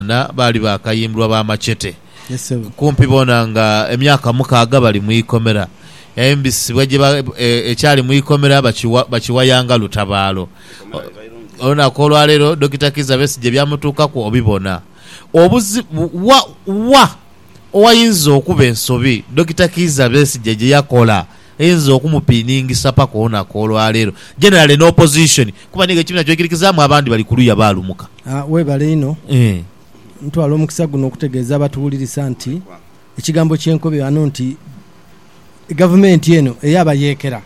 Bona baali baakayimbulwa ba machete. Kumpi bona nga emyaka mukaaga bali mu ikomera. Yaimbisibwa gye ba, e, ekyali mu ikomera bakiwa, bakiwaya nga lutabaalo. O, olunaku olwa leero Dokita Kizza Besigye ebyamutuukaku obibona. Obuzi, wa, wa owainza okuba ensobi Dokita Kizza Besigye gye yakola? einza okumupiningisa paka olunaku olwaleero. Generally ne opposition kuba nigo ekibiina kyoikirikizaamu abandi bali kuluya baalumuka. Webale inho. Ntwala omukisa guno okutegeeza abatuwulirisa nti ekigambo kyenkobi ghano nti gavumenti eno eyabayeekera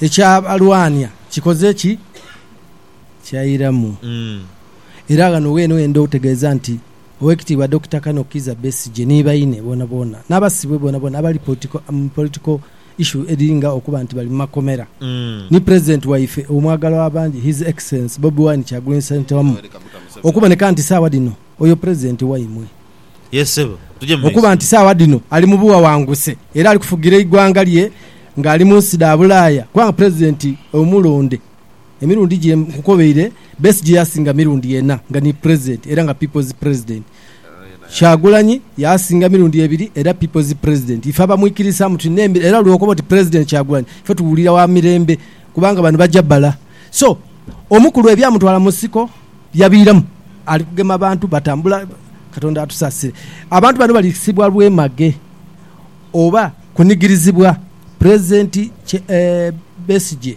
ekyabalwaania kikoze ki? Kyairamu. Era ghano weene wendha okutegeeza nti Owekitiibwa Dokita Kano Kiiza Besigye ni baine boonaboona n'abasibwe boonaboona abali mu political issue edhiri nga okuba nti bali mu makomera ni President waife omwagalwa w'abangi His Excellency Bobi Wine Kyagulanyi Ssentamu wamu okuboneka nti saawa dhino oyo President waimwe okuba nti saawa dhino ali mu buwawanguse era ali kufugira eigwanga lye nga ali munsi dha bulaaya kubanga President omulonde Emirundi gye nkukobeire, Besigye yasinga mirundi ena nga ni Pulezidenti era nga People's President. Kyagulanyi yasinga mirundi ebiri era People's President. Ife abamwikirisaamu tulina emirembe era lwokoba oti Pulezidenti Kyagulanyi ife tuwulira wa mirembe kubanga bano baja bala. So omukulu ebyamutwala mu nsiko yabiiramu ali kugema bantu batambula. Katonda atusaasire. Abantu bano balisibwa lwemage oba kunigirizibwa Pulezidenti Besigye.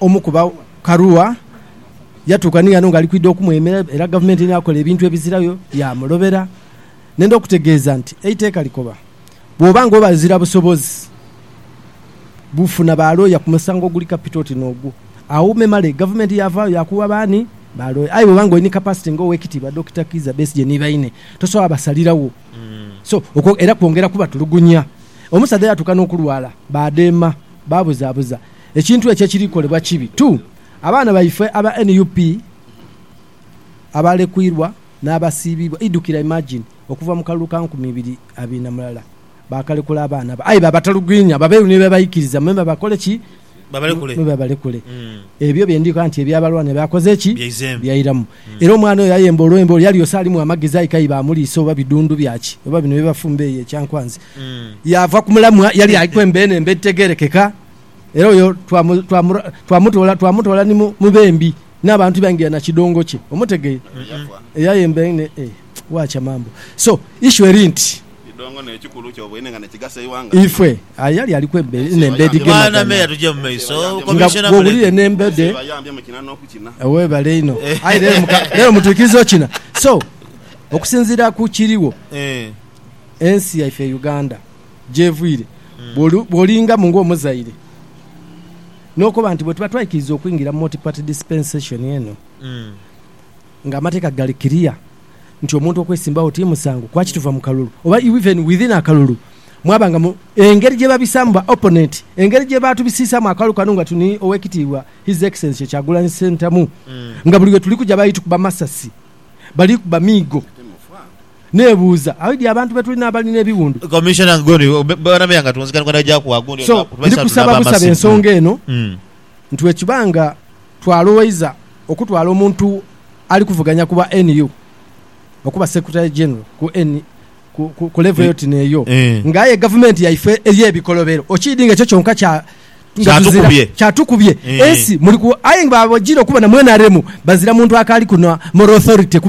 omu ku ba Karua yatuuka ni ghano nga ali kwidha okumwemera era Gavumenti ni akola ebintu ebizirayo yaamulobera. Nenda okutegeeza nti eiteeka likoba bw'oba nga obazira busobozi bufuna ba looya ku musango oguli kapito oti n'ogwo. Agho memale Gavumenti yaavaayo yaakugha baani? Ba looya. Aye bw'oba nga oli ni kapasite nga Oweekitiibwa Dokita Kiiza Besigye ni baine, tosobola basaliragho. So, okwo era kwongera kubatulugunya. Omusaadha yatuuka n'okulwala, baadeema. baabuzaabuza ekintu ekyo ekiri kolebwa kibi tu. Abaana baife aba nup abaalekwirwa n'abasiibiibwa idhukira imagine okuva mu kalulu ka nkumi ibiri abiri na mulala baakalekula abaana abo aye baabatalugwinya babeeru ni beebaikiriza me babakole ki? Me babalekule. Ebyo bye ndhi kola nti eby'abalwana byakoze ki? Byairamu. Era omwana oyo ayemba olwembo olwo yali ose alimu amagezi aye k'aibe amuliisa oba bidhundhu bya ki, oba bino bye bafumba eyo ekyankwanzi, yaava ku mulamwa yali aliku emba eno emba edhitegeerekeka. Era oyo twamutoola, twamutoola ni mu bembi, n'abantu baingira na kidongo kye. Omutegeire? Eyayemba eno. Wacha mambo so issue eri nti. Idongo ne kikulu kyobweine nga nekigasa eighanga. Ife aye yali aliku nembedi gemagana nga bwowulira enembede webale inho aye lero mutwikiriza okina so okusinzira kukiriwo ensi yaife eye Uganda gyevuire bwolinga mu nga omuzaire nokoba nti bwetuba twaikiriza okwingira mu multi party dispensation eno Nga amateeka gali kiriya nti omuntu okwesimbagho ti musango, kwaki tuva mu kalulu oba even within akalulu mwaba nga mu engeri gye babisaamu ba opponent, engeri gye baatubisiisaamu akalulu kano nga tuni Owekitiibwa His Excellency Kyagulanyi Ssentamu nga buli we tuli kuja bali tukuba masasi, bali kuba miigo. Nebuuza aidhi abantu be tulina abali n'ebiwundu? Commissioner Guni, Bwana Meeya nga tunzika ni kwenda gyaku wa gundi So, ndi kusaba busaba ensonga eno nti bwe kiba nga twalowoiza okutwala omuntu ali kuvuganya ku bwa NU okuba Secretary General ku NU ku level eyo ti n'eyo, nga aye gavumenti yaife ey'ebikolobero okiidhi nga ekyo kyonka kya kyatukubye ensi muli ku aye nga bwajire okuba na mu nrm bazira muntu akaali ku na moral authority ku